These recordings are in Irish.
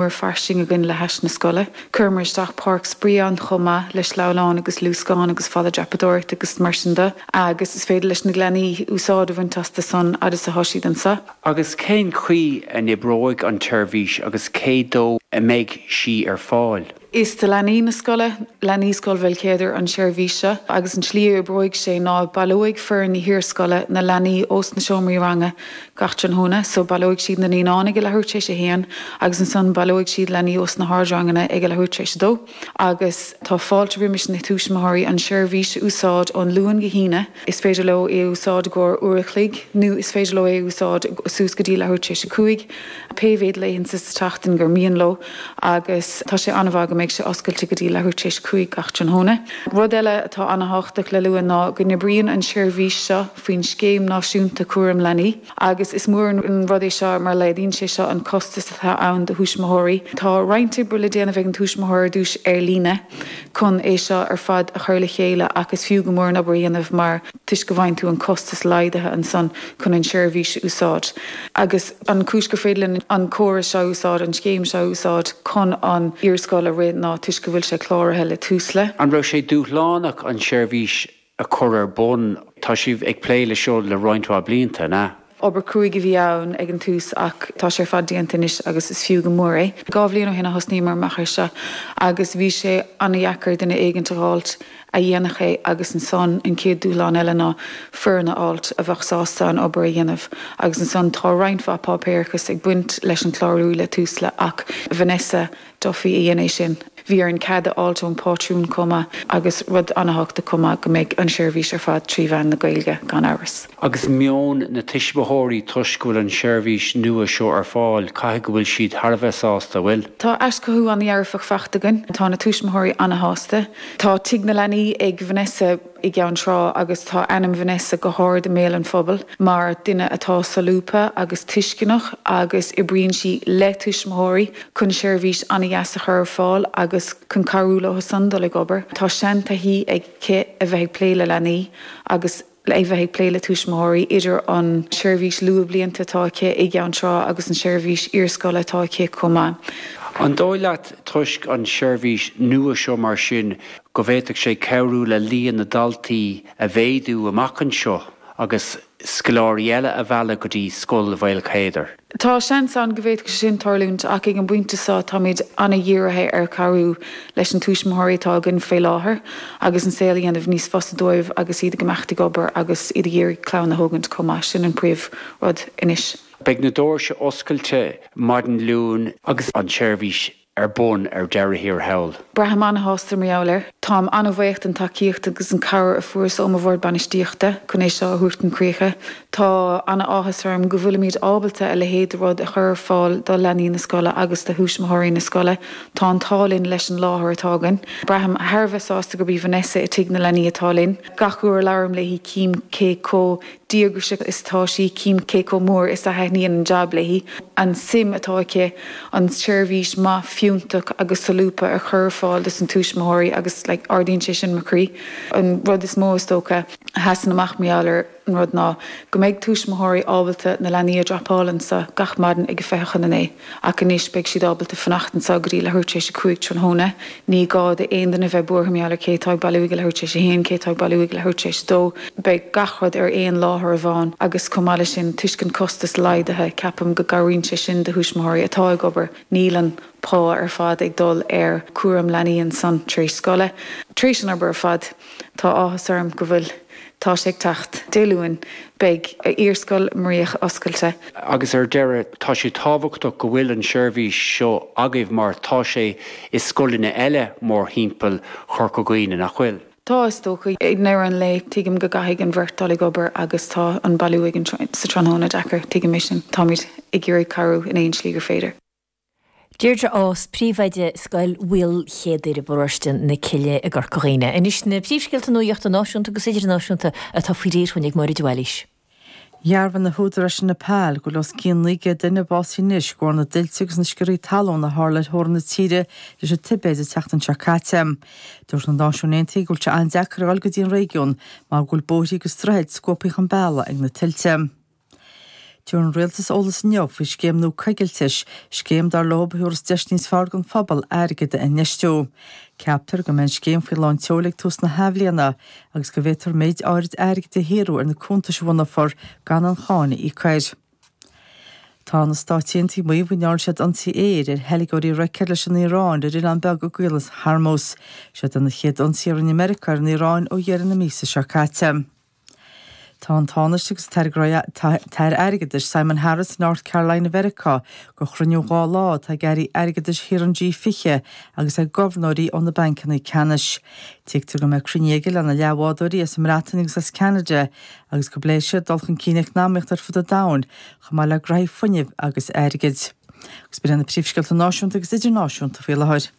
mór fairsing againn le hais na scoile. Chuireamar isteach páirc spraoi ann chomh maith le sleamhnáin agus luascáin agus falla dreapadóireachta agus mar sin de agus is féidir leis na leanaí úsáid a bhaint astu an fhad is atá siad anseo. Agus cén chaoi a n-oibreoidh an tseirbhís agus cé dó a mbeidh sí ar fáil? Is do leanaí na scoile, leanaí Scoil Bheilcéadair an tseirbhís seo agus an tslí a oibreoidh sé ná baileoidh foireann na hiar-scoile na leanaí ós na seomraí ranga gach tráthnóna. So baileoidh siad na naíonáin ag a leathuair tar éis a haon agus ansan baileoidh siad leanaí ós na hardranganna ag a leathuair tar éis a dó. Agus tá fáilte roimis na tuismitheoirí an seirbhís a úsáid ón Luan go hAoine. Is féidir leo í a úsáid i gcomhair uair a chloig nó is féidir leo é a úsáid suas go dtí leathuair tar éis a cúig, pé mhéad laethanta sa tseachtain gur mian leo. Agus tá sé an-mhaith go mbeidh sé oscailte go dtí leathuair tar éis a cúig gach tráthnóna. Rud eile atá an-thábhachtach le lua ná go n-oibríonn an seirbhís so. faoin Scéim Náisiúnta Cúraim Leanaí agus is mór an rud é seo mar laghdaíonn sé seo an costas atá ann do thuismitheoirí. Tá roinnt oibre le déanamh ag an tuismitheoir ar dtús ar líne chun é seo ar fad a chur le chéile ach is fiú go mór an obair a dhéanamh mar toisc go bhfaigheann tú an costas laghdaithe ansan chun an seirbhís a úsáid agus an chúis gur féidir linn an córas seo a úsáid, an scéim seo a úsáid chun an iar-scoil a rith ná toisc go bhfuil sé cláraithe le Tusla. An raibh sé dúshlánach an seirbhís a chur ar bun? Tá sibh ag plé le seo le roinnt mhaith blianta, an ea? Obair cúig a bhí ann ag an tús ach tá sé ar fad déanta anois agus is fiú go mór é. Dhá bhliain ó shin a thosnaíomar amach ar seo agus bhí sé ana-dheacair duine éigint a dh'fháilt a dhéanfadh é agus ansan an chéad dúshlán eile ná foireann a fháilt a bheadh sásta an obair a dhéanamh agus ansan tá roinnt mhaith páipéarachais ag baint leis an clárú le Tusla ach Vanessa Duffy a dhein é sin. Bhí orainn cead a fháilt ón pátrún chomh maith agus rud an-thábhachtach chomh maith go mbeidh an seirbhís ar fad trí mheán na Gaeilge gan amhras. Agus meon na tuismitheoirí toisc go bhfuil an seirbhís nua seo ar fáil caithfidh go bhfuil siad thar a bheith sásta, an bhfuil? Tá aiseolas an-dhearfach faighte againn. Tá na tuismitheoirí an-shásta. Tá Tigh na Leanaí ag Vanessa. i gCeann Trá agus tá ainm Vanessa go hard i mbéal an phobail mar duine atá solúbtha agus tuisceanach agus oibríonn sí le tuismitheoirí chun seirbhís an-deas a chur ar fáil agus chun cabhrú leo san dul ag obair. Tá seantaithí aici a bheith ag plé le leanaí agus a bheith ag plé le tuismitheoirí, idir an seirbhís luathbhlianta atá aici i gCeann Trá agus an seirbhís iarscoile atá aici chomh maith. An dóigh leat, toisc an seirbhís nua seo mar sin, go bhféadfadh sé cabhrú le líon na ndaltaí a mhéadú amach anseo agus scoláirí eile a mhealladh go dtí Scoil Mhaolchéadair. Tá seans ann go bhféadfadh sé sin tarlúint ach ag an bpointe seo táimid an-dhírithe ar chabhrú leis na túismitheoirí atá againn faoi láthair agus an saol a dhéanamh níos fusa dóibh agus iad ag imeacht ag obair agus iad ag iarraidh clann a thógaint chomh maith, sin an príomh rud anois. Beidh na dóirse oscailte maidin Luain agus an tseirbhís ar bun ar deireadh thiar thall. Braithim an-shásta mar gheall air. Táim an-bhaoch den tacaíocht agus an cabhair a fuaireas ó mo bhord bainistíochta chun é seo a thabhairt chun críche. Tá an-áthas orm go bhfuilimid ábalta a leithéid de rud a chur ar fáil do leanaí na scoile agus do thúismitheoirí na scoile. Tá an t-ádh linn leis an láthair atá againn. Braithim thar a bheith sásta gurb í Vanessa i Tigh na Leanaí atá linn. Gach uair a labhraím léi cím cé chomh díograiseach is atá sí, cím cé chomh mór is a thaitníonn an jab léi, an suim atá aici an tseirbhís maith, fiúntach agus solúbtha a chur ar fáil dos na túismitheoirí agus like ardaíonn sé sin mo chroí. An rud is mó is dócha a sheasann amach mar gheall ar an rud ná go mbeidh túismitheoirí ábalta na leanaí a dropáil anso gach maidin ag a fiche chun a naoi. Ach anois beidh siad ábalta fanacht anseo go dtí leathuair tar éis a cúig tráthnóna. Ní gá d'aon duine bheith buartha mar gheall ar cé atá ag bailiú ag leathuair tar éis a haon, cé atá ag bailiú ag leathuair tar éis a dó. Beidh gach rud ar aon láthair amháin agus chomh maith leis sin toisc an costas laghdaithe. Ceapaim go gcabhraíonn sé sin do thuismitheoirí atá ag obair. Níl an pá ar fad ag dul ar cúram leanaí ansan tar éis scoile. Tar éis an obair ar fad, tá áthas orm go bhfuil Tá sé ag teacht. Dé Luain, beidh Iarscoil Muiríoch oscailte. Agus ar deireadh, tá sé tábhachtach go bhfuil an tseirbhís seo agaibh mar tá sé i scoileanna eile mórthimpeall Chorca Dhuibhne, nach bhfuil? Tá, is dócha. I ndeireadh an lae, tuigim go gcaithfidh an bheirt dul ag obair agus tá an bailiú ag a trí sa tráthnóna deacair, tuigim é sin. Táimid ag iarraidh cabhrú in aon slí gur féidir. Deirdre Ághas, Príomhoide Scoil Mhaolchéadair i bparóiste na Cille i gCorca Dhuibhne. Anois na príomhscéalta nuachta náisiúnta agus idirnáisiúnta atá faoi réir dhúinn ag Máire De Bhailís. Dhearbhaigh na húdaráis i Nepal go bhfuil os cionn 900 duine básaithe anois de bharr na dtuilte agus na sciorrthaí talún a tharla ar theorainn na tíre leis an Tibéid an tseachtain seo caite. Dúirt na Náisiúin Aontaithe go bhfuil sé an-deacair a dhul go dtí an réigiún mar go bhfuil bóithrí agus droichid scuabtha chun bealaigh ag na tuilte. D'iarr an rialtas eolas inniu faoi scéim nua coigiltis, scéim dar leo a thabharfas deis níos fearr don phobal airgead a infheistiú. Ceaptar go mbeidh an scéim faoi lán tseoil ag tús na hathbhliana agus go bhféadfar méid áirid airgid a shaothrú ar na cuntais a bhunófar gan aon cháin a íoc air. Tá na Stáit Aontaithe ag maíomh go ndearna siad ionsaí aeir ar theilgeoirí roicéad leis an Iaráin ar oileán beag i gCaolas Hormuz. Seo iad na chéad ionsaithe a rinne Meiriceá ar an Iaráin ó dheireadh na míosa seo caite. Tá an Tánaiste agus an tAire Airgeadais Simon Harris i North Carolina Mheiriceá do chruinniú dhá lá atá ag airí airgeadais thíortha an G20 agus ag gobharnóirí ó na bancanna ceannais. Tuigtear go mbeidh cruinniú aige lena leathbhádóirí as an mBreatain agus as Ceanada agus go bpléifidh siad dul chun cinn eacnamaíochta ar fud an domhain chomh maith le gnóthaí fuinnimh agus airgid. Agus b'in iad na príomhscéalta Náisiúnta agus Idirnáisiúnta faoi láthair.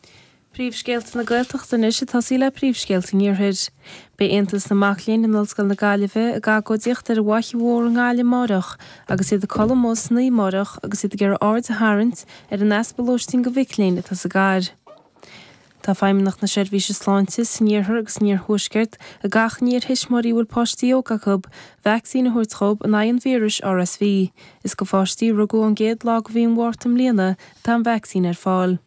Príomhscéalta na Gaeltachta anois ag tosaí le Príomhscéalta an Iarthair. Beidh Aontas na Mac Léinn in Ollscoil na Gaillimhe ag agóidíocht ar an bhFaiche Mhór i nGaillimh amárach agus iad ag codladh amuigh san oíche amárach agus iad ag iarraidh aird a tharraingt ar an easpa lóistín do mhic léinn atá sa gcathair. Tá Feidhmeannacht na Seirbhíse Sláinte san Iarthar agus san Iarthuaisceart ag achainí ar thuismitheoirí a bhfuil páistí óga acu vacsaín a thabhairt dhóibh in aghaidh an víris RSV. Is do pháistí a rugadh ón gcéad lá de mhí an Mhárta i mbliana atá an vacsaín ar fáil.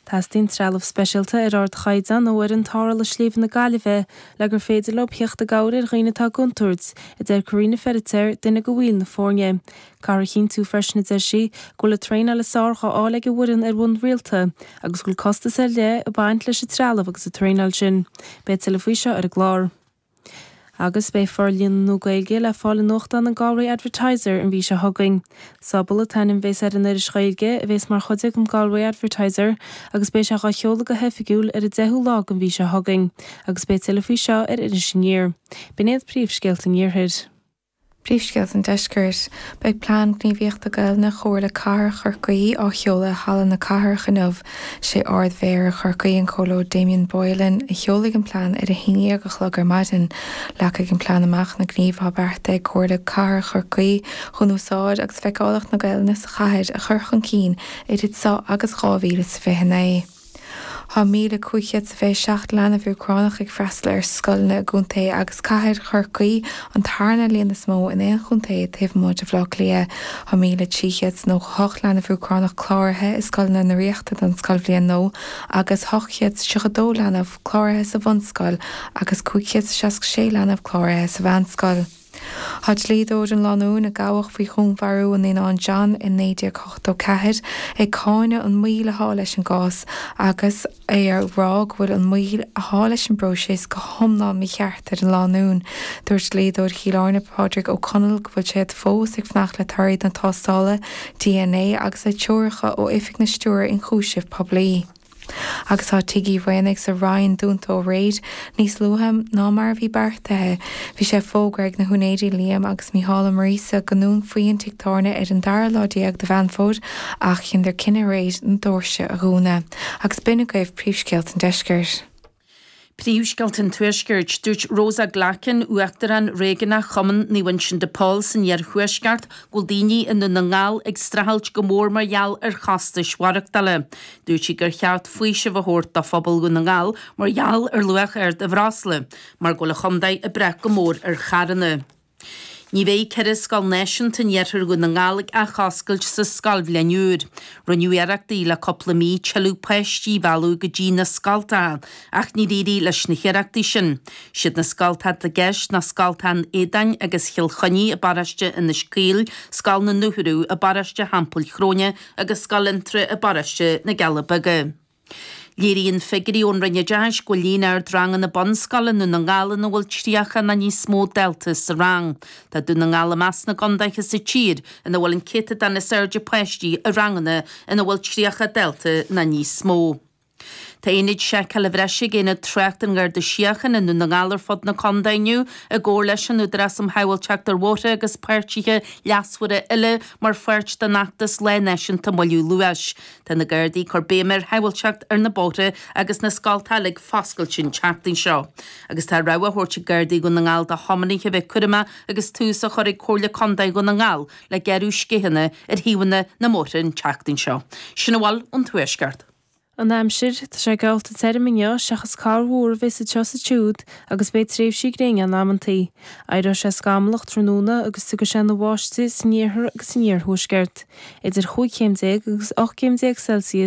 Teastaíonn trealamh speisialta ar ardchaighdeán ó fhoireann tarrthála sléibhe na Gaillimhe le gur féidir leo theacht i gcabhair ar dhaoine atá i gcontúirt, a deir Karina Feiritéar, duine de bhaill na foirne. Caithfear a chinntiú freisin, a deir sí, go bhfuil an traenáil is fearr dhá fháil ag an bhfoireann ar bhonn rialta agus go bhfuil costas ar leith ag baint leis an trealamh agus an traenáil sin. Beidh tuilleadh faoi seo ar an gclár. Agus beidh forlíonadh Gaeilge le fáil i nuachtán an Galway Advertiser an mhí seo chugainn. Sobal an t-ainm a bhéas ar an iris Ghaeilge a bhéas mar chuid den Galway Advertiser agus beidh sé dhá sheoladh go hoifigiúil ar an 10ú lá den mhí seo chugainn agus beidh tuilleadh faoi seo ar Iris Aniar. B'in iad príomhscéalta an Iarthair. Príomhscéalta an Deiscirt, Beidh Plean Gníomhaíochta Gaelainne Chomhairle Cathrach Chorcaí á sheoladh i Halla na Cathrach inniu. Sé Ard-Mhéara Chorcaí, an Comhairleoir Damien Boylan, a sheolfaidh an plean ar a haon déag a chlog ar maidin. Leagfaidh an plean amach na gnímh atá beartaithe ag Comhairle Cathrach Chorcaí chun úsáid agus feiceálacht na Gaelainne sa chathair a chur chun cinn idir seo agus 2029. Tá 1,527 leanbh Úcránach ag freastal ar scoileanna i gcontae agus cathair Chorcaí, an tarna líon is mó in aon chontae taobh amuigh de Bhaile Átha Cliath. Tá 1,398 leanbh Úcránach cláraithe i scoileanna na Ríochta don scoilbhliain nua agus 832 leanbh cláraithe sa bhunscoil agus 566 leanbh cláraithe sa mheánscoil. Tá dlíodóir an lánúin a gabhadh faoi dhúnmharú an naíonáin John i 1984 ag cáineadh an mhoill atá leis an gcás agus é á rá go bhfuil an mhoill atá leis an bpróiseas go hiomlán mícheart ar an lánúin. Dúirt dlíodóir Chill Airne, Pádraig Ó Conaill, go bhfuil siad fós ag fanacht le torthaí na tástála dna agus le treoracha ó Oifig an Stiúrthóra Ionchúiseamh Poiblí. Agus tá Tigh Uí Bhraonaigh sa Rinn dúnta ó aréir níos luaithe ná mar a bhí beartaithe. Bhí sé fógartha ag na húinéirí Liam agus Mícheál Ó Muirgheasa go ndúnfaí an tigh tábhairne ar an dara lá déag de Mheán Fómhair ach chinneadar cinneadh aréir na doirse a dhúnadh agus b'in agaibh príomhscéalta an deiscirt. Príomhscéalta an Tuaiscirt. Dúirt Rosa Glackin, Uachtarán Réigiúnach Chumann Naomh Uinseann de Pól san iarthuaisceart, go bhfuil daoine i nDún na nGall ag streachailt go mór mar gheall ar chostais mhaireachtála. Dúirt sí gur cheart faoiseamh a thabhairt do phobal Dhún na nGall mar gheall ar luach ard an bhreosla, mar go bhfuil an chontae ag brath go mór ar charranna. Ní bheidh ceithre scoil náisiúnta in iarthar Dhún na nGall ag athoscailt sa scoilbhliain úr. Rinneadh iarrachtaí le cúpla mí tuilleadh páistí a mhealladh go dtí na scoltacha ach níor éirigh leis na hiarrachtaí sin. Siad na scoltacha atá i gceist ná scoltacha an Éadáin agus Chill Chainnigh i bparóiste Inis Caoil, scoil na Dúchoradh i bparóiste Theampaill Chróine agus scoil Fhionntrá i bparóiste na gCealla Beaga. Léiríonn figiúirí ón Roinn Oideachais go bhfuil líon ard ranganna bunscoile i nDún na nGall ina bhfuil 30 nó níos mó dalta sa rang. Tá Dún na nGall i measc na gcondaetha sa tír ina bhfuil an céatadán is airde páistí i ranganna ina bhfuil 30 dalta nó níos mó. Tá ionaid seiceála bhreise ag Aonad Tráchta an Gharda Síochána i nDún na nGall ar fud na condae inniu i gcomhar leis an Údarás um Shábháilteacht ar Bhóithre agus páirtithe leasmhara eile mar pháirt den fheachtas Lá Náisiúnta Moilliú Luais. Tá na Gardaí ag cur béime ar shábháilteacht ar na bóithre agus na scoltacha ag foscailt an tseachtain seo. Agus tá rabhadh á thabhairt ag Gardaí Dhún na nGall do thiománaithe a bheith cúramach agus tús á chur ag Comhairle Contae Dhún na nGall le gearradh sceitheanna ar thaobhanna na mbóithre an tseachtain seo. Sin a bhfuil ón Tuaisceart. An aimsir, Tá sé geallta tirim inniu seachas corrmhúr a bheas anseo is ansiúd agus beidh tréimhsí gréine ann amantaí. Éireoidh sé scamallach tráthnóna agus tiocfaidh sé ina bháistigh san iarthar agus san iarthuaisceart, idir 15 chéim agus 18 céim Celsius,